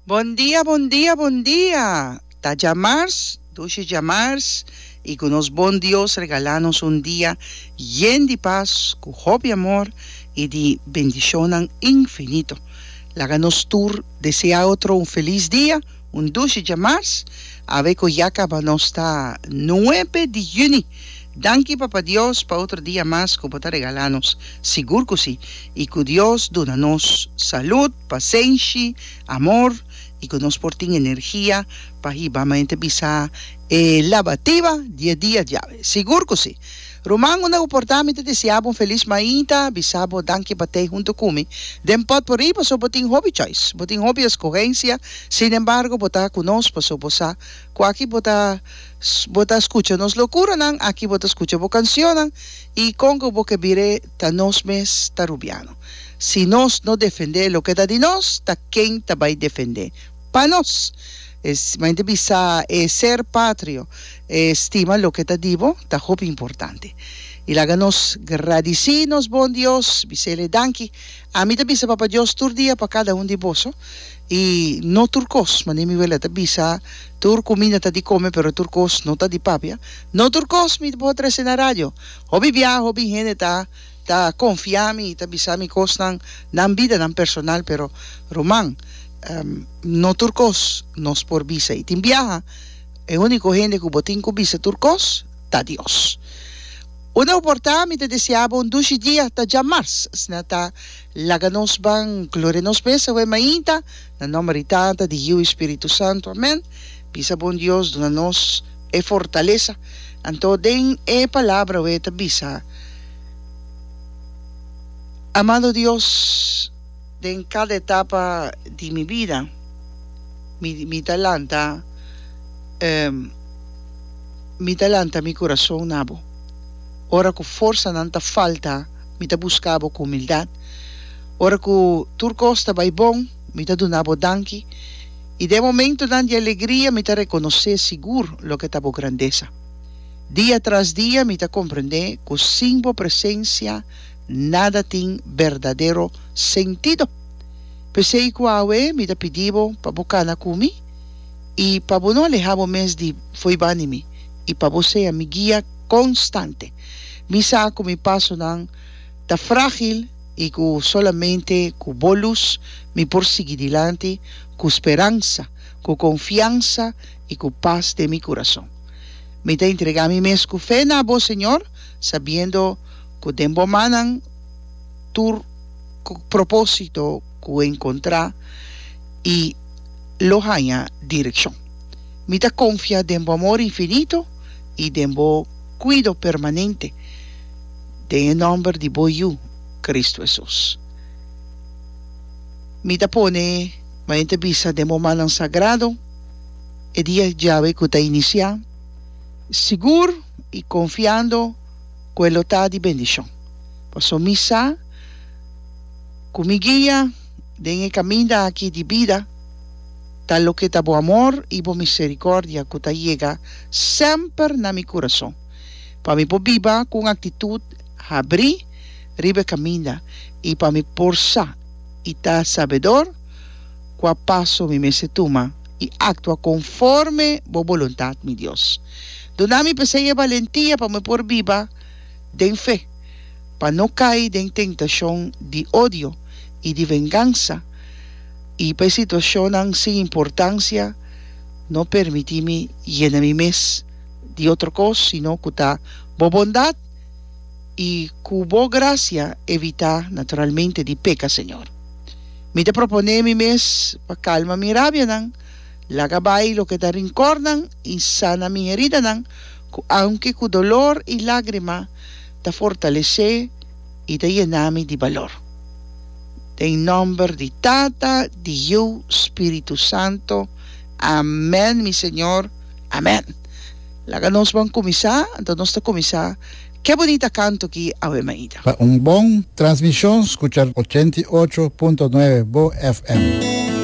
Bon dia bon dia bon dia ta djamars dushi djamars y cu nos bon Dios regala nos un dia yen di pas cu hopi amor y di bendicionnan infinito laga nos tur desea otro un feliz dia un dushi djamars awe cu ya caba nos ta nuebe di juni danki papa Dios pa otro dia mas cu bo ta regala nos sigur cu si y cu Dios duna nos salud. Pasenshi, amor i ku nos por tin energia pa hiba mente bisa e labatiba di e dia diawe. Sigur ku si! Ruman, unda bo por ta mi ta deseá bo un felis mainta, bisa bo danki pa tei huntu ku mi den pòt por i paso bo tin hopi choice, bo tin hopi eskohensia, sinembargo bo ta ku nos paso bo sa ku aki bo ta bo ta skucha nos lokuranan, aki bo ta skucha bo kansionnan i kon ku bo ke bira e. Ta nos mes ta rubiano. Si nos no defende loke ta di nos, ta ken ta bai defende pa nos? E mente bisa e ser patrio, e stima loke ta di bo, ta hopi importante. I laga nos gradisí nos bon Dios, bisele, Danki. Ami ta bisa Papa Dios tur dia pa kada un di boso, i no tur kos, manera mi wela ta bisa, Tur kuminda ta di kome, pero tur kos no ta di papia. No tur kos mi ta por a trese na radio. Hopi bia, hopi hende ta ta konfia mi, ta bisa mi kosnan, nan bida, nan personal, pero ruman, no tur kos nos por bisa. I tin biaha, e úniko hende ku bo tin ku bisa tur kos, ta Dios. Unda bo por ta, mi ta deseá bo un dushi dia ta djamarss, asina ta. Laga nos ban gloria nos mes awe mainta, na nomber di Tata, di Yiu i Spiritu Santu. Amen. Bisa bon Dios duna nos e fortalesa. Anto den e palabra awe ta bisa, Amado Dios, den kada etapa di mi bida mi mi ta lanta mi ta lanta mi kurason na bo, ora ku forsanan ta falta. mi ta buska bo ku humildat. Ora ku tur kos ta bai bon, mi ta duna bo danki, i den momentunan di alegria mi ta rekonosé sigur loke ta bo grandesa. Dia tras dia mi ta komprendé ku sin bo presensia nada tin berdadero sentido. P'esei ku awe mi ta pidi bo pa bo kana ku mi i pa bo no alehá bo mes di fo'i bani mi, i pa bo sea mi guia. Constante. Mi sa cu mi pasonan ta fragil y cu solamente cu bo luz mi por sigui dilanti cu speransa, cu confiansa y cu paz den mi curason. Mi ta entrega mi mes cu fe na bo, Señor, sabiendo cu den bo mannan tur propósito cu encontra y lo haya direccion. Mi ta confia den bo amor infinito. i den bo kuido permanente, den e nòmber di bo Yu, Kristu Hesus. Mi ta pone manente bisa den bo mannan sagrado e dia djawe ku ta inisiá, sigur i konfiando ku e lo ta di bendishon, pasobra mi sa ku mi guia den e kaminda aki di bida. Ta loke ta bo amor i bo misericordia cu ta yega semper na mi curason, pa mi por biba cu un actitud habrí riba e caminda i pa mi por sa i ta sabedor cua paso mi mester tuma i actua conforme bo boluntad, mi Dios. Duna mi p'esei e balentia pa mi por biba den fe, pa no cai den tentacion di odio i di vengansa, i pa e situacionnan sin importancia no permiti mi yena mi mes di otro cos, sino cu ta bo bondad i cu bo gracia evita naturalmente di peca, Señor. Mi ta propone mi mes pa calma mi rabianan, laga bai loke ta rincornan i sana mi heridanan, cu aunke cu dolor i lagrima ta fortalece, i ta yená mi di balor. Den nòmber di Tata, di Yu, Spiritu Santo. Amèn, mi Señor. Amèn. Laga nos ban kuminsá. Anto nos ta kuminsá ke bunita kanto ki, Ave Maida. Pa un bon transmishon skucha ochenta i ocho punto nuebe bo FM.